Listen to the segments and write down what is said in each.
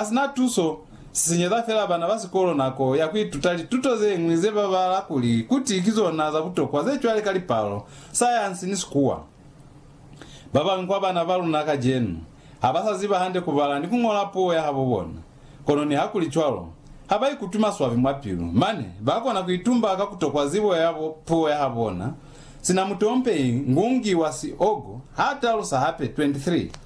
Hasina tuso, sisenyeza fela bana ba sikolo nako ya kuituta lituto zeñwi ze babala kuli kuti ki zona za butokwa ze cwale ka lipalo, sayansi ni sikuwa. Babañwi kwa bana ba luna kacenu, ha ba sa ziba hande kubala ni kuñola puo ya habo bona. Kono nihakulicwalo, ha ba ikutwi maswabi mwa pilu, mane ba kona kuitumba ka kutokwa zibo ya puo ya habona, sina mutompehi Ngungi wa Siogo ha talusa hape, 23.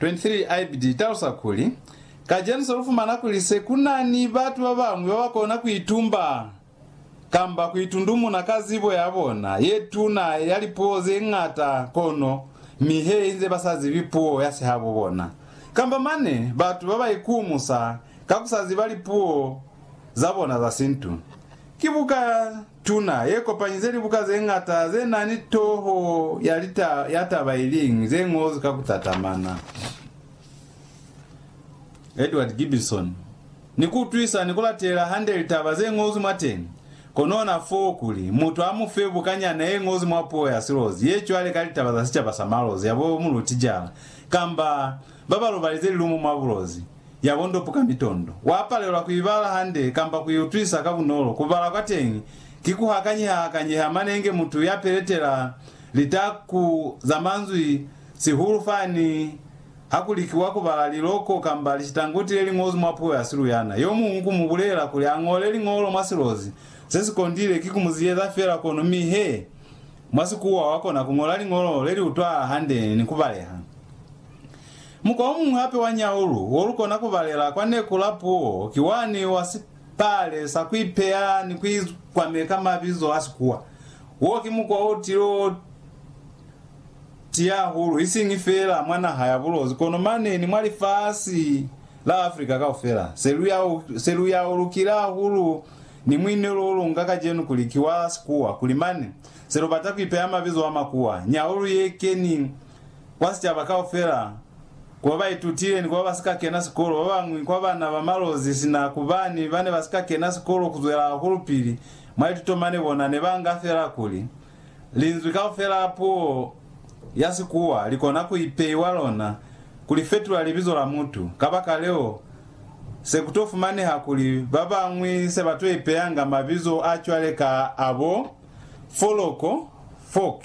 23 ibid. Italusa kuli, Kacenu se lu fumana kuli se ku na ni batu ba bañwi ba ba kona ku itumba kamba ku itundumuna ka zibo ya bona ye tuna ya lipuo ze ñata kono mi he inze ba sa zibi puo ya sihabo bona. Kamba mane batu ba ba ikumusa ka ku sa ziba lipuo za bona za sintu. Ki buka Tuna, ye kopanyize libuka ze ñata ze na ni toho ya lita ya taba i liñwi, ze ñozwi ka ku tatamana. Edward Gibbison, Ni ku utwisa ni ku latelela hande litaba ze ñozwi mwateñi, kono ona fo kuli mutu a mu fe buka nyana ye ñozwi mwa puo ya Silozi ye cwale ka Litaba za Sicaba sa Malozi ya bo Mulutijala, kamba ba ba lobalize lilumu mwa bulozi, ya bondopu ka mitondo, wa palelwa ku ibala hande kamba ku iutwisa ka bunolo. Ku bala kwa teñi ki ku hakanyeha-hakanyeha mane inge mutu ya peletela litaku za manzwi, sihulu fani ha ku likiwa ku bala liloko kamba lisitanguti le li ñozwi mwa puo ya siluyana. Yo muñwi ku mu bulela kuli a ñole liñolo mwa silozi se si kondile ki ku mu ziyeza fela kono mi he mwa Sikuwa wa kona ku ñola liñolo le li utwahala hande ni ku baleha. Mukwa omuñwi hape wa nyaulu wo lu kona ku balela kwa neku la puo ki wani wa sipale sa ku ipeya ni ku ikwame ka mabizo a Sikuwa. Wo ki mukwa o til'o tiya hahulu isiñi fela mwa naha ya Bulozi kono mane ni mwa lifasi la Afrika kaufela. Se lu ya ulukile hahulu ni muinelo o lu nga kacenu kuli ki wa Sikuwa kuli mane se lu bata ku ipeya mabizo a Makuwa. Nyaulu ye keni kwa sicaba kaufela, ku ba ba itutile ni ku ba ba si ka kena sikolo, ba bañwi kwa bana ba malozi sina ku ba ni ba ne ba si ka kena sikolo ku zwela hahulupili mwa lituto mane bona ne ba nga fela kuli, linzwi kaufela la puo ya Sikuwa li kona ku ipeiwa lona ku li fetula libizo la mutu. Kabakaleo, se ku to fumaneha kuli ba bañwi se ba to ipeyanga mabizo a cwale ka a bo foloko, folk.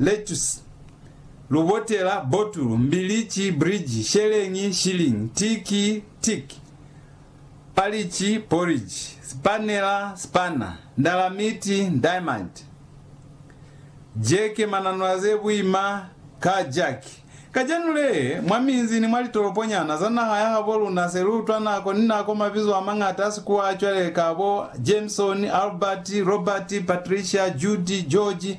lettuce, lubotela, botulu, mbilici, bridge, sheleñi, shilling, tiki, tick, palici, porridge, sipanela, spanner, ndalamiti, diamond, jeke, mananola ze buima, car jack. Kacenu lee, mwa minzi ni mwa litoloponyana za naha ya habo luna se lu utwa nako ni nako mabizo a mañata a sikuwa a cwale ka bo Jameson, Albert, Robert, Patricia, Judy, George,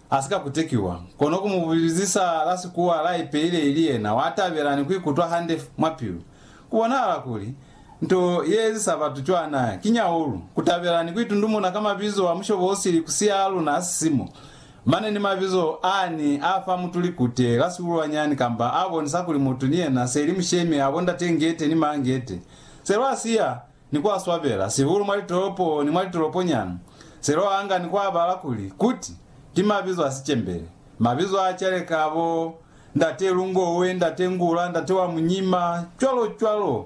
A si ka kutekiwa, kono ku mu bizisa la sikuwa la ipeile ili yena wa tabela ni ku ikutwa hande mwa pilu. Ku bonahala kuli, nto ye ezisa batu cwana ki nyaulu, ku tabela ni ku itundumuna ka mabizo a mushobo o sili ku siya a luna a sisimo, mane ni mabizo a ni a fa mutu likute la sihulwanyani kamba a bonisa kuli mutu ni yena se li mushemi a bo ndate'ngete ni ma'ngete. Se lwa siya ni ku a swabela, sihulu mwa litolopo ni mwa litoloponyana, se lo anga ni ku a bala kuli kuti ki mabizo a sicembele, mabizo a caleka bo Ndate Lungowe, Ndate Ngula, Ndate wa Munyima, cwalo cwalo.